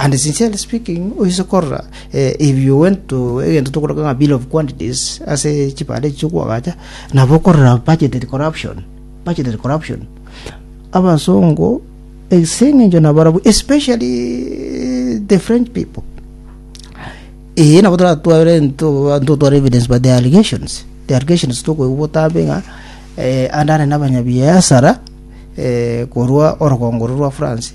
And sincerely speaking, oise korora eh, if you went to egento tokoroka ng'a bill of quantities ase chibande echi chiokwogacha nabo okorora budgetary corruption budgetary corruption abasongo ase eng'encho nabarabu especially eh, the french people ee nabo toratware ntotware evidence by the allegations the allegations tokoigwa botambe ng'a eh, andare nabanyabiasara eh, korwa orogongoro rwa france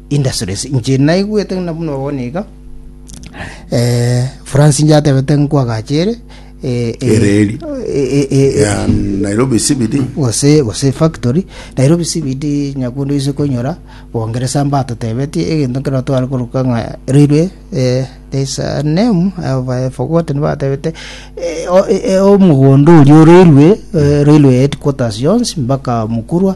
industries inche naigwete ng'a buna bono iga eh, france inche atebete nkwagachere eh, eh, Ereri. eh, eh, eh, Yeah, nairobi cbd gose gose factory nairobi cbd nyakundu ise konyora bongeresa mbatotebetie egento nkero tware koruka ng'a railway eh, there's a name I have, I have forgotten batebete eh, o- eh, eh, omogondo oria o railway eh, railway headquarters yonsi mpaka mukurwa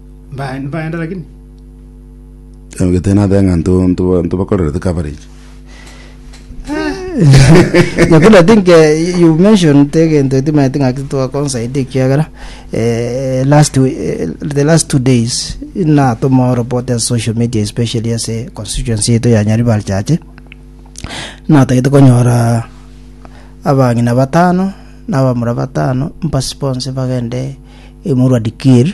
Mbae, nibaenda lakini. Ogete nathe ng'a nto- nto- ntobakorerete coverage. Nyakundi I think eh, you mentioned egento etimanyete ng'a titwakonsaida ekiagera eh, last we- eh, the last two days natoma report as social media especially as a constituency yetu ya Nyaribari chache natagete konyora abang'ina batano nabamura batano mpasi bonse bagende emurwa dikir